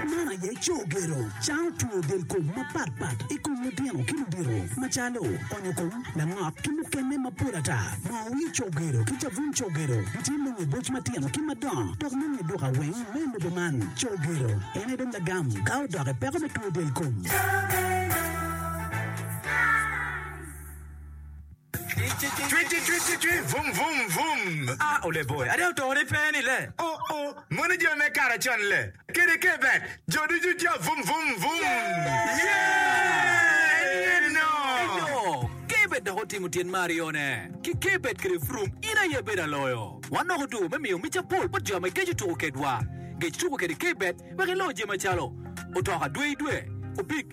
Man aye co gero cango two del kom mapat pat i kom litino ki ludito macalo onyo kom, langok ki mukene mapol ata. Moo wir co gero ki cabun co gero gitye me nge boc matino ki madongo dok me nge duka weng me lobo man. Co gero en aye dong lagam ka odok i peko me two del kom. Cwit cwit cwit cwit cwit vum vum vum a ole boy ada oto ni pe ni le oh oh moni jo me kara con le kede ke bet jo ducu ja vum vum vum yeah en ye no eyo ke bet dok otimo tyen me aryo ne ki ke bet kede vrum in aye bedo aloyo wan dok otuko me miyo mica pol bot jo ma geco tuko kedwa gec tuko kede ke bet wek ilo je macalo otoka dwe idwe opig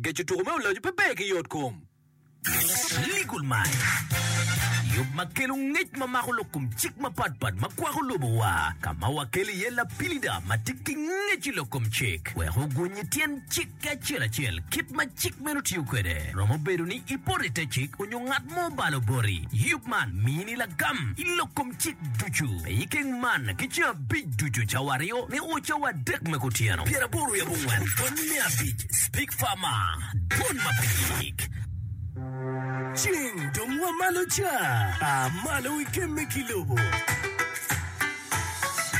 Geco tuko me olaco pe ber ki yot kom. Legal Mind, Yub ma kelo ngec ma mako lok kom cik mapat pat ma kwako lobowa, ka ma wakelo iye lapilida ma tye ki ngec i lok kom cik wek oguny i tyen cik ki acel acel kit ma cik meno tiyo kwede. Romo bedo ni ipoto i te cik onyo ngat mo obalo boti, yub man mini lagam i lok kom cik ducu me keng man ki ceng abic ducu, cawa aryo me o, cawa adek me kutyeno, pyeraboro wiye abongwen pwony me abic, Speak Farmer, dwol ma pe yik. Cing dong wa malo ca, a malo i kem me ki lobo.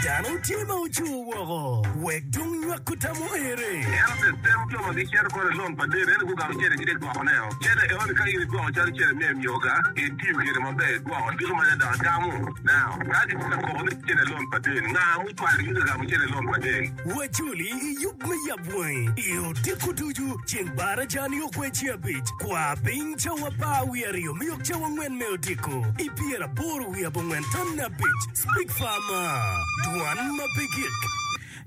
Dano tye ma ocur woko, wek dong nywak kutam oere. Ento tetero co ma gicito kono i lom pa Dedo, ento gugamu cente ki dek gwoko ne o. Cene enoni ka in igwoko calo cene me anyoga, itiyo kwede maber, igwoko ducu ma Nyadoc gamo. Now, ka gitye ka koko ni cene lon pa del, nga ma ocwalo in ka gamo cene lon pa del? Wajoli i yub me yab wangi i odiko ducu ceng bar aja-ni ogwe ci abic. Kwa piny cawa apar wiye aryo me yok cawa angwen me odiko i pyer aboro wiye abongwen tonne abic. Spik far ma dwan ma pe gik.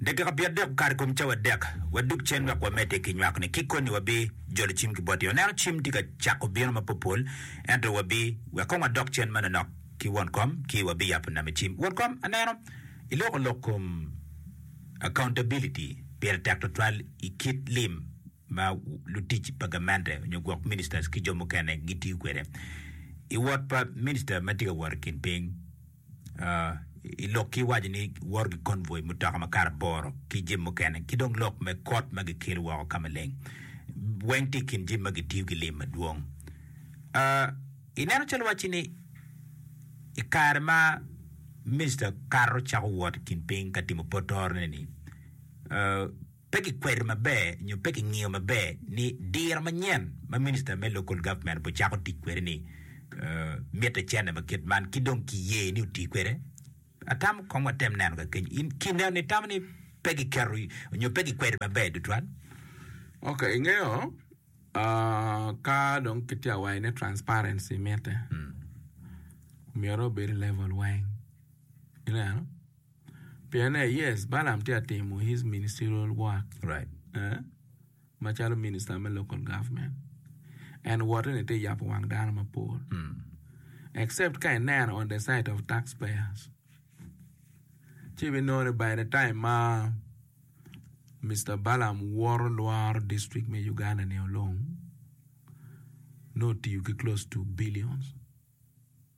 Dakika pyerdek okato i kom cawa adek. Wadog cen wek wamedde ki nywak-ni. Ki koni wabi jolo cim ki botti. Oneno cim tye ka cako bino ma popol, ento wabi wek kong wadok cen manonok ki won kom ci wabi yabo name cim. Won kom, aneno iloko lok kom accountability pire tek twatwal i kit lim ma lutic pa gamente nyo gwok ministers ki jo mukene gitiyo kwede i wot pa minister ma tye ka wot i kin piny. i lok ki waco ni woro ki convoy mutoka ma kare aboro ki jami mukene ki dong lok me kot ma gikelo woko ka maleng weng tye i kin jami ma gitiyo ki lim madwong. Uh, ineno calo wacci ni i kare ma Mister Kato cako wot i kin piny ka timo potorone ni, uh, pe kikwedo maber nyo pe kingiyo maber ni diro manyen ma Minista me Local Government obbe cako tic kwede ni mitte cente ma kit man ki dong kiye ni oti kwede. Atamo kong watem neno ka keny. In ki neno ni tamo ni pe kiketo nyo pe kikwedo maber tutwal? Ok, ingeyo ah, ka dong kitye ka waco ni transparency mitte, myero obed i level weng. Ineno? Pien ne, yes, Balaam tye ka timo his ministerial work right, eh? macalo minista me local government. En wote ni tye yabo wang dano mapol. Except ka ineno on the side of taxpayers. Ci ibinongo ni by the time ma Mister Balaam woto lworo district me Uganda ni olong, nongo otiyo ki close to billions.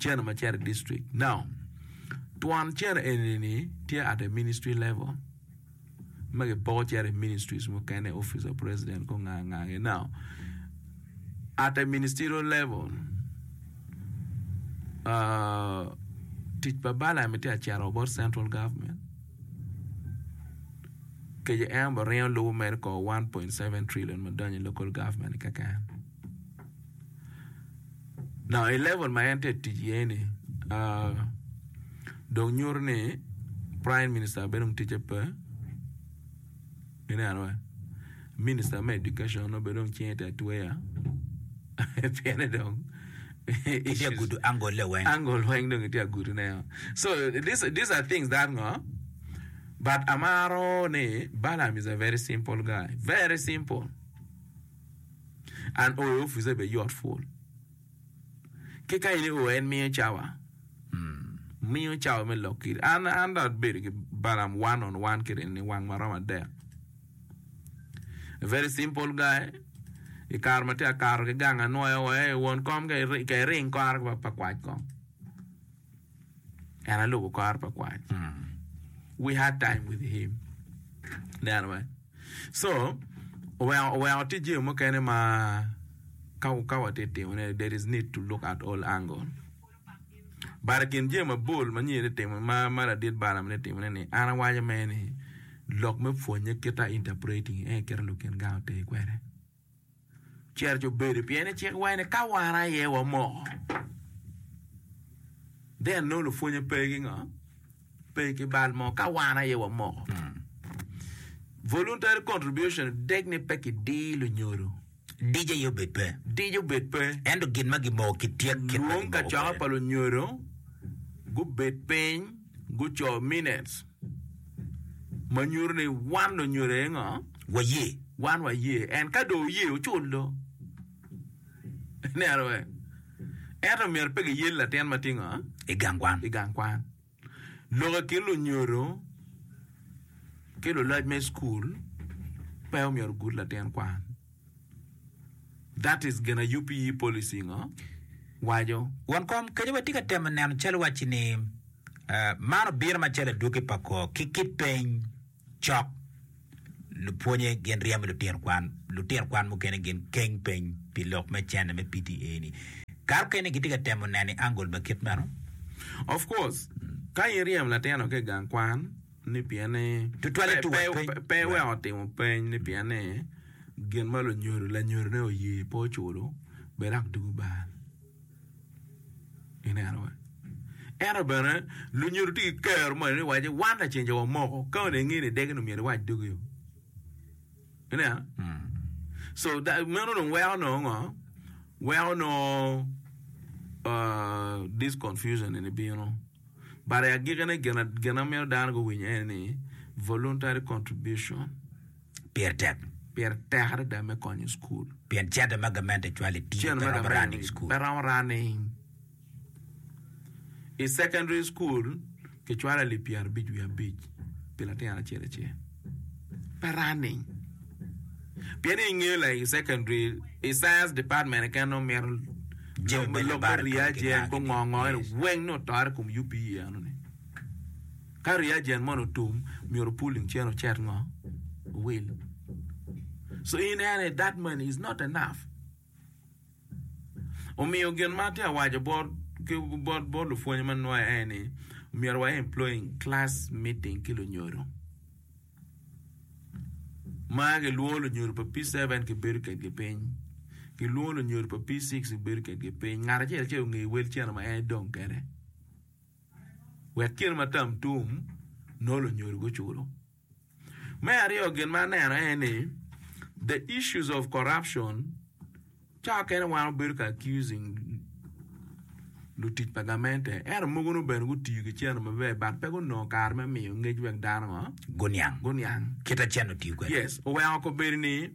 cene ma cito i district now twon cene eni ni tye at a ministry level ma kipoko cito i ministries mukene office of president kong nga nga gi now at a ministerial level tic pa Balaam ni tye ka cito wa bot central government kece en obingo lubo mere kong one point seven trillion ma donyo i local government keken. Now i level ma en tye ka tic iye ni dong nyuto ni prime minister bene dong ticce pe minister me education dong bene cinge tye ka tweyo pienni dong angle weng dong kitye ka gudune woko so this are things that ngo but amaro ni Balam is a very simple guy very simple. An oyo officer be yot pul. Ki ka in i o en miyo cawa. Miyo cawa me lok kiri. An an dong abedo ki Balam one on one kede en ni wang ma romo adek. Very simple guy. I kare ma tye akato ki gang anwoyo wa, "Ei won kom ka iring kore pa kwac kong. En alubo kor pa kwany. We had time with him. Ineno me? So, oweko, oweko tye jami mukene ma ka, ka watye timone, there is need to look at all angle. But i kin jami mabol ma nyi ni timo, ma, ma ladit Balaam ni timone ni, an awaco me ni, lok me pwonye kita interpreting, en ekita lukin gang ote kwede. Cerca obedo pien ni cik waco ni ka wan aye wamoko, then nongo lupwonye pe ki ngo? Pe ki bal mo ka wan aye wamoko. Voluntary contribution dek ni pe kidii lunyodo, Dic aye obed pe. dic obed pe. Ento gin ma gimoko ki tyek kit ma Lwong gimoko kacoka kwede. pa lunyodo gubed piny guco minutes. ma nyuto ni wan onyodo aye ngo waye wan waye en ka do oye oculo ineno wee ento myero pe giyel latin ma tye ngo i gang kwan i gang kwan lok i kin lunyodo ki luloc me cukul pe omyero ogut latin kwan. That is gin a yubi yi policy ngo waco. Won kom, kenyo watye ka temo neno calo wacci ni man obino macalo adwogi pa kor ki kit peny cok lupwonye gin ryemo lutino kwan, lutino kwan mukene gin keng peny pi lok me cene me PTA ni. Kare okene gitye ka temo neno i angle ma kit meno. Of course, ka iryem latin o ki i gang kwan, ni pienne Tutwalle two pe, peny. pe, pe weko timo peny ni pienne gin ma lunyodo lanyodone oye pe oculo bed dok dugo bal. Ineno wa. Ento bene lunyodo tye ki kero moni ni waci wan lacen jo wamoko ka onongo ingeyo ni idegi ni myero iwac dugi o. Ineno? Mm. So da, meno dong weko nongo ngo? Weko nongo uh, this confusion ni bino. but i agikine gin ma mito dano guwiny ene ni voluntary contribution pire tek, pire tek adada me konyo cukul. Pien cente ma gamente cwalo i tiji pe romo running cukul. Pe romo running. I secondary cukul kicwalo alip pyerabic wiye abic pi latin acel acel. pa running pien i nge like secondary i science department keken nongo mito jami ma lok me reagent gungongo eno weng nongo otore i kom UPE eno ni ka reagent moni otum myero pulling chain ocit ngo owil so in ene that money is not enough. Omiyo gin ma atye ka waco bot lupwony ma nwayo aye ni myero wa employing class meeting ki lunyodo ma kilwongo lunyodo pa P7 kibedo kwedgi piny kilwongo lunyodo pa P6 kibedo kwedgi piny ngat acel acel onge wel cene ma en dong kwede wek kit ma tam tum nongo lunyodo guculo. Me aryo gin ma aneno aye ni the issues of corruption cawa kene wan wabedo ka accusing lutic pa gamente ento mogo nongo bene gutiyo ki cene maber but pe gunongo kare me miyo ngec wek dano ngo Guniang. guniang. Kita cen otiyo kwede. Yes, oweko kobedo ni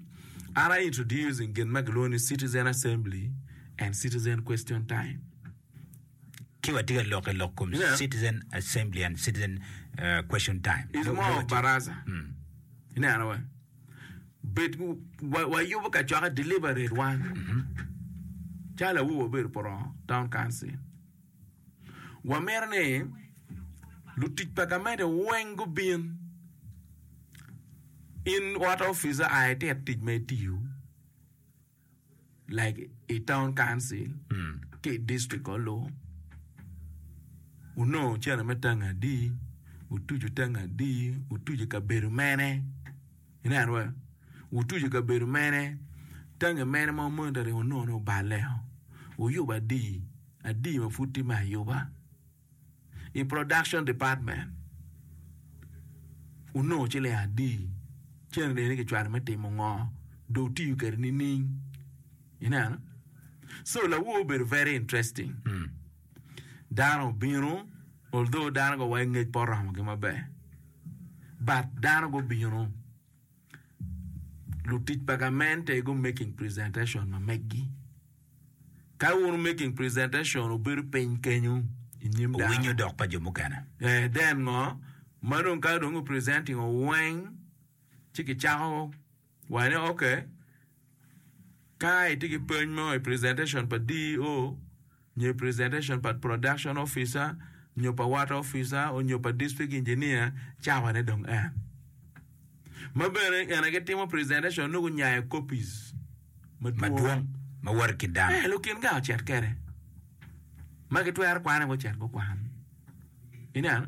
an I introducing gin ma gilwongo ni citizen assembly and citizen question time. Ki watye ka lokke lok kom Yeah. Citizen Assembly and Citizen uh, Question Time. is more of baraza. Ineno wa. Bet wa, wa yubo ka cwaka deliberate wan. Calo awobo wabedo porongo town council. Wa mito ni lutic pa gamente weng gubin. In what officer aye tit tic ma itiyo. like i town council ki i district kor lok wunongo cene me tango adi wutuco tango adi wutuco i kabedo mene ineno wa wutuco i kabedo mene tangi mene ma wunongo ni oballe wuyubo adi adi ma pud tye me ayuba. i production department wunongo ciling adi ceng reni kicwalo me timo ngo dong wutiyo kwede nining ineno so lawor obedo very interesting dano obino although dano gowaco ngec pe oromogi maber but dano gubino Lutic pa gamente gu making presentation ma meggi. Ka wun making presentation obedo piny kenyu i nyim dano. Owinyo dok pa jo mukene. Eh, then ngo? Ma dong ka dong presenting oweng ci kicako wani okay Ka itye ki peny mo i presentation pa DEO nyo i presentation pa Production Officer nyo pa Water Officer onyo pa District Engineer, cawa ne dong en. Ma bene ene gi timo presentation nongo nyayo copies madwong ma woti ki dano. Eh, lukin ga ocet kede. Ma gitwero kwane gucet gukwan. Ineno?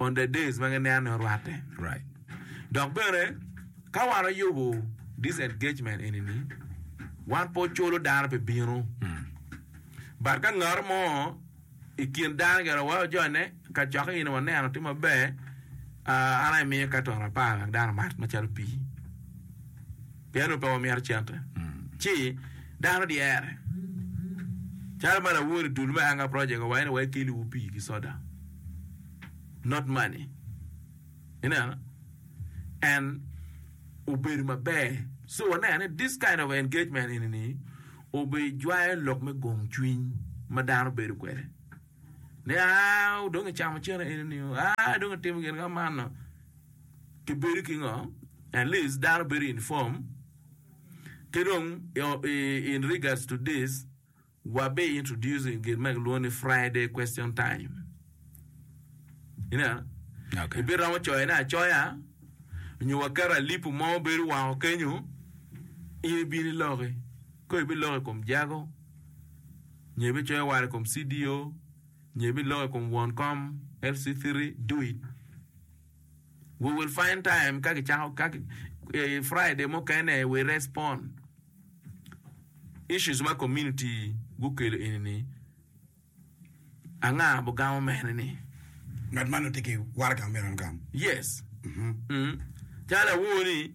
on the days ma gineno ni orwatte. Dok bene, ka wan oyubo disengagement eni-ni, wan pe oculo dano pi bino. But ka ngat mo i kin dano gire wa ojone kacokke in waneno tye maber, an aye imiyo Caton apar wek dano omat macalo pii. Pien onongo pe wamito cente, ci dano dyere. Calo ma lawori dul me Anga Project owaco ni wa ekeliwu pii ki soda, not money. Ineno? En obedo maber. So waneno ni this kind of engagement eni ni obijwayo lok me gong cwiny ma dano bedo kwede. Ni aa dong icamo cene eni ni, aa dong itimo gin ka manno. ki bedo ki ngo, at least dano bedo inform, ki dong in regards to this wa be introducing gin ma kilwongo ni Friday question time ineno Okay. ibi romo coyo ne acoya nyo wa keto alipu mo bedo woko kenyo in ibin iloki ko ibi loko i kom jago nyo ibi coyo wara i kom CDO Nyo ibiloko i kom won kom LC3 do it we will find time ka kicako ka Friday mukene we respond issues ma community gukelo eni ni anga bugamo mene ni Ngat man otye ki waraga ma myero en gam. yes calo awooni.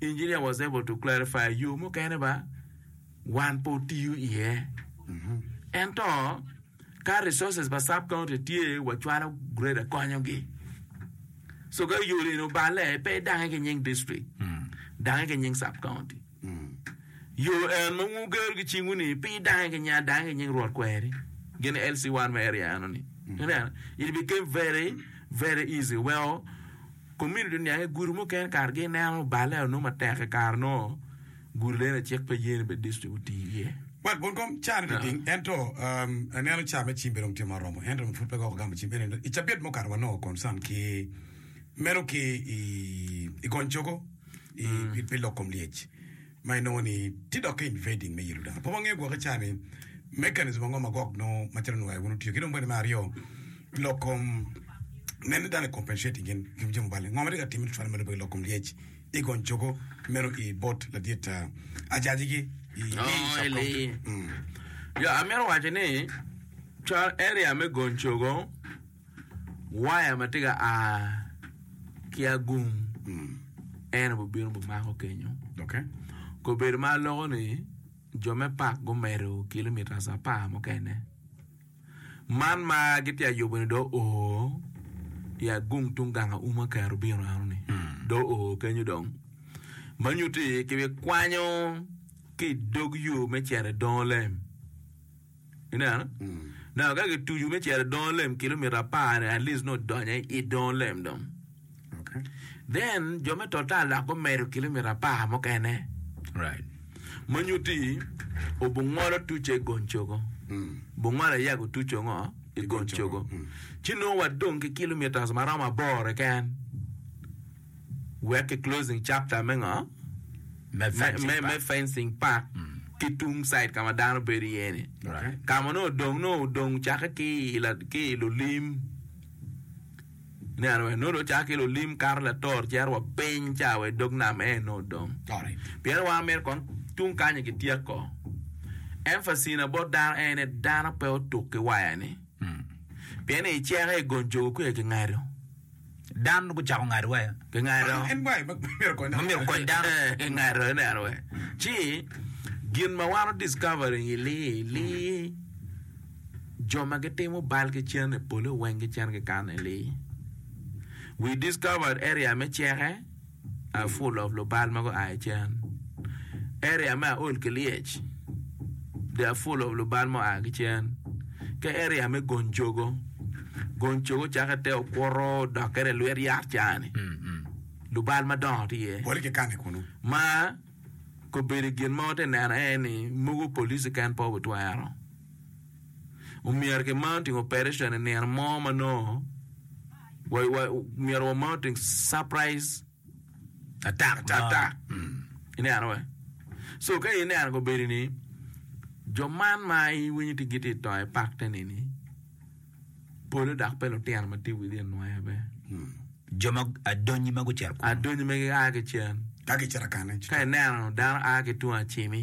Engineer was able to clarify yo mukene ba wan pe otiyo iye. Ento ka resources pa sub county tye wa cwalo grader konyo gi. So ka yo eni obale pe idange ki nying district. Dange ki nying sub county. Yo en ma wun wugero ki cingu ni pe idange ki nying adange ki nying rwot kweri. Gin LC1 me area eno ni. Ineno? It became very very easy weko Komiti dong oniang ni gudo mukene kare gineno obale aye onongo matek i kare nongo gudo leno i cik pa yeni bed distrik oti iye. Wat gwon kom caa ni liting ento aneno caa me cim bedong tye ma oromo ento dong pud pe gwoko gamo cim ento i cabit mukato wanongo concern ki meno ki i gony cogo pi lok kom lyec. ma inongo ni tye dok ka invading me yelo dano. Pe wangeyo gwoki ca ni mechanism ango ma Gog nongo macalo nwayo wun otiyo ki dong bene me aryo lok kom nen ni dano i compensating gin i kom jami obalo ngo ma tye ka timme tutwal ma lubbe lok kom lyec i gony cogo meno i bot ladit ah, ajaji gi i Oh, i sub ili. county. Mm. Ya, amito waco ni cal area me gony cogo waya ma tye ka a ki agung en aye bibino bimako kenyo. Kong obedo ma aloko ni jo me pak gumedo kilomitas apar mukene. Man ma gitye ka yubo ni dong oo i agung tung gang auma kare obino eno ni dong oo kenyo dong ma nyuto ni kibikwanyo ki i dog yo me cito i Dongolem. Ineno? Now, ka gitucu me cito i dongo lem kilomita apar ni at least nongo odonyo i it dongo lem dong. Okay. Then, jo me total dok gumedo kilomita apar mukene. Right. Ma nyutti, obungolo tuce i Goncogo. Mm. Bungolo aye gutuco ngo? I Goncogo. Goncogo. Mm. Ci nongo wadong ki kilomitas ma romo aboro keken. Wek ki closing chapter me ngo? Me fencing park ki tung side ka ma dano bedo iye ni. Ka ma nongo odong nongo odong cake ki ki i lulim ineno wee nongo dong cake ki lulim kato lator cito wa piny ca wa idog nam ene nongo odong. Pien wan myero kong tung kany ni kityek ko. Emphasis na bot dano en ni dano pe otuk ki waya ni. Pien ni iceke igonjogo kwiye ki ngado. Dano gucako ngado waya. Gingado ma myero okony dano. Gingado, ineno wee. Ci, gin ma wan o discovering i li, li, jo ma gitimo bal gicen i pole weng gicen gikano i li. We discovered area me ceke. a full of lubal ma gua i cen area me aol ki lyec they are full of lubal ma oa ki cen ki area me gony cogo gony cogo cake te okuto dokke i lwet yat cani lubal madongo tye iye Pol kikane kunu. ma kobedo gin ma wati neno en ni mogo police keken pe obitwero omyero ki mar timo operation i nino mo ma nongo myero wa mar timo surprise attack i neno wa so ka i neno gobedi ni jo man ma i winyo ni gitye ka to i pak te nini pole dok pe lutino ma tye within nwaye be jo ma adonyi ma gucito kunu adonyi ma gia ki cen ka gicito kane ka ineno dano a ki tung acimi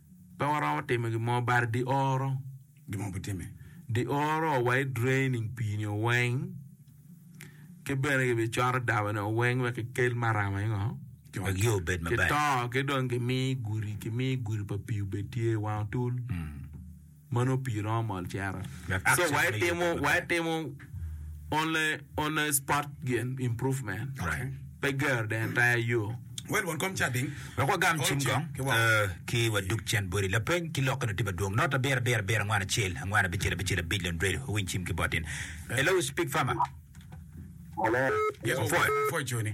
Pe waromo timo gin mo bad di oro. Gin mo pe time. Di oro wa i draining pii ni oweng ki bene ki bi coto daba ni oweng wek ki kel marama ingo? Ki wek yo obed maber. Ki to ki dong ki mi gudi ki mi gudi pa pii obed tye wang otul. Mano pii romo mol cero. Wai timo only spot gin improvement pe gero the entire yoo. Wek wagam cim kong ki wadug cen body. Lapeny ki lokke nongo tye madwong. Not abiro abiro abiro angwen acel angwen abicel abicel abic lon dredo owiny cim ki bot in. Hello speak farmer. Opwoyo.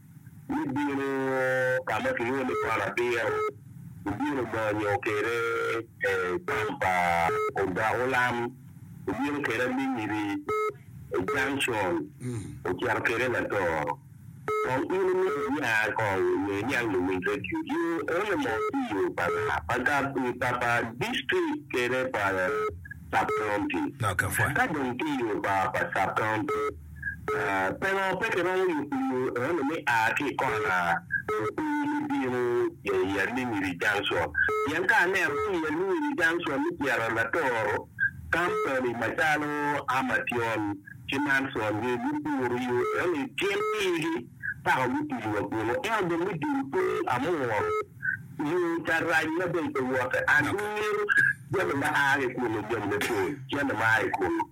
Ibino ka ma kilwongo ni Kwan Abiro, ibino monyo kede cam pa odok olam, ibino kede aminyiri, junction, ocito kede latoro. Kong in imit niya kong nyo iniang luwiny radio you only mo ki yo pa nga? Pa gab pa pa district kede pa sub county? Ka dong ki yo pa pa sub county, Pingo pe kiromo yubo yo eno me a ki i kona Lukwir me bino i Alingiri Junction? Pien ka aneno ni i Alingiri Junction me Pyerra Latoro, kampani macalo Amatyon ki Manson ni gupuro yo eno-ni gin igi paka gutidi wa bino. Ento dong me dul piny amworo yo ca rac ma dong pe wote. An amyero jami ma a ki i kunu jami mapol cente ma a ki i kunu.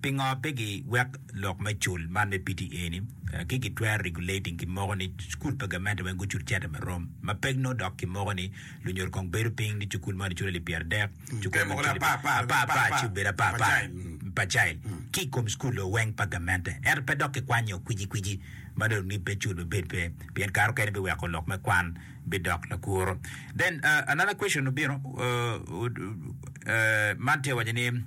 Pingo pe gi wek lok me cul man me pte eni ki gi twero regulating ki moko ni cukul pa gamente weng gucul cente ma rom ma pek no dok ki moko ni lunyodo kong bedo ping ni cukul moni culo alip pyera dek cukul moni culo apar apar ci obedo apar apar pa child ki kom cukul o weng pa gamente ento pe dok ki kwanyo kwiji kwiji ma dong ni pe cul ma bed pe pien kare okene bi weko lok me kwan bi dok lakuro then another question obino man tye waco ni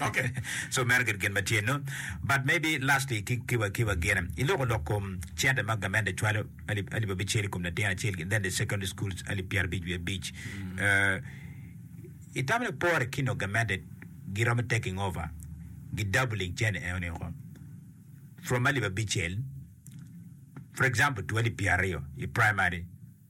Ok, so meno gin gin ma tye no, but maybe lastly ki ki wa ki wa gin i loko lok kom cente ma gamente cwalo alip alip abicel i kom latin acel gin then the secondary schools alip pyera abic wiye abic. Uh, i tamo ni pore ki no gamente giromo taking over gi doubling cente eno ni ko from alip abicel for example to alip pyera aryo i primary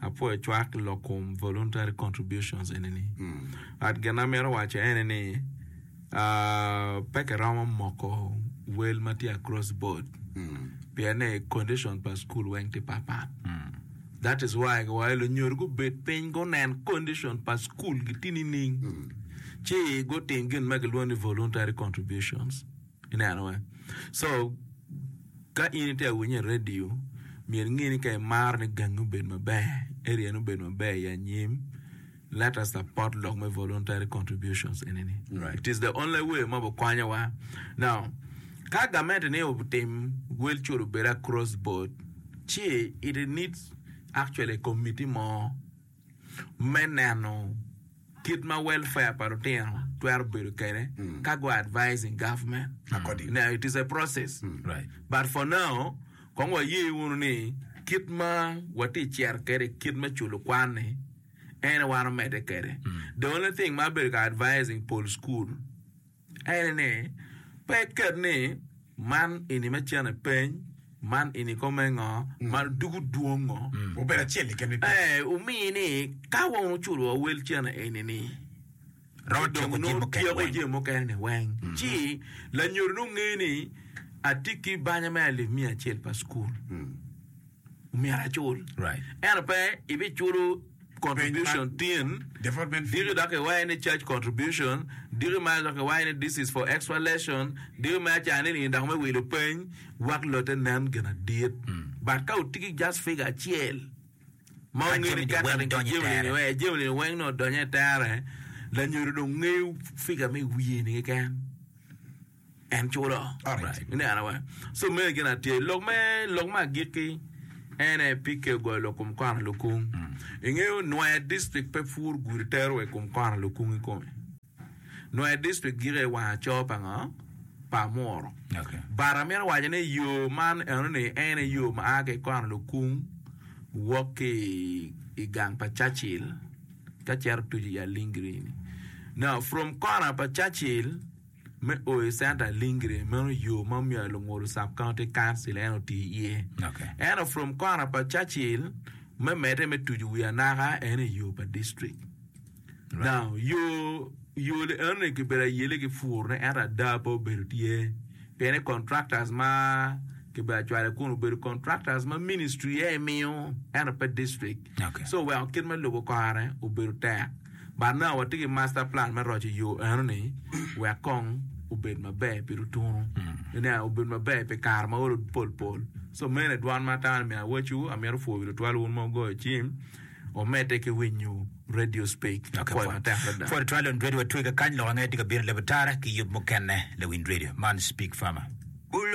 Apwoyo cwak i lok kom voluntary contributions enini. But gin amito waco ene ni ah, pe kiromo moko wel ma tye across board pien ni condition pa school weng tye patpat. That is why giwaco lunyodo gubed piny gunen condition pa school gi tye nining ci gutim gin ma gilwongo ni voluntary contributions. Ineno eh? So, ka in itye ka winye i radio, myero inge ni ka imaro ni gangi obed maber, area-ni obed maber i anyim, let us support lok me voluntary contributions eni-ni. Right. It is the only way ma bikonyowa. Now, ka gamente ni otim wel cul obed across board, ci it needs actually a committee mo me neno kit ma welfare pa lutino twero bedo kwede ka go advising government now it is a process but for now kong waye wunu ni kit ma watye cito kwede kit me culo kwan ni en aye wan omede kwede the only thing ma abedo ka advising pol school aye ni, Pe iket ni, 'Man eni me cene peny, man eni kong me ngo, man ducu dwong ngo. Obedo acel keken me peny. Ee, omi ni ka wong oculo wa wel cene eni ni, Romo ci dong tyeko jami nongo mukene tyeko weng. jami mukene ni weng. Ci lanyodo nongo ngeyo ni atye ki banya me alip miya acel pa cukul. Omyero acul. Right. Ento pe ibiculo contribution tin diki dok kiwaye ni church contribution diki ma dok kiwaye ni this is for exhalation diki me acara nining dok me wilo peny wek lote nen gin adit but ka wutye ki just figure acel ma Ka wungeyo ni jami-ni weng catering donyo i jami-ni tere. eh, jami-ni weng nongo donyo i tere lanyodo dong ngeyo figure me wiye-ni keken En culo. Alright. Ni neno wa. So meri gin atye. Lok me lok ma agiki ene pi keyo goyo lok kum kono lukung. Mm. Ingeyo Nwaer District pe pur gudi tero we kum kono lukung i kome. Nwaer District gike wang acoo pa ngo? Pa amuro. Okay. But amito waco ni yo man eno ni ene yo ma a ki kono lukung wok ki i gang pa Churchill ka cero tucu i Alingiri ni. Now from kono pa Churchill Me o i Center Lingre, meno yo ma omiyo Alungudu Sub-County Council en otii iye. Ento from kona pa Churchill me medde me tucu wi anaka en aye yo pa district. Now, yo yo li eno ni kibedo ayele ki pur ne ento ada pe obedo tye. Pien ni contractors ma kibedo acwale kun obedo contractors ma ministry aye miyo ento pe district. So weko kit me lubo kore obedo tek, but now watye ki master plan me roco yo enoni wek kong obed maber pi lutunu, iniang, obed maber pi kare ma olo pol pol. So meno aye dwan ma atamo ni myero awacwu, amito pwoyo wi lutwal wun ma wugoyo cim, wamedde ki winyo radio speak, apwoyo matek adada. Pwod twal Lewin Radio watwege kany, lok ange tye ka bino i leb otara ki yub mukene Lewin Radio man speak farmer.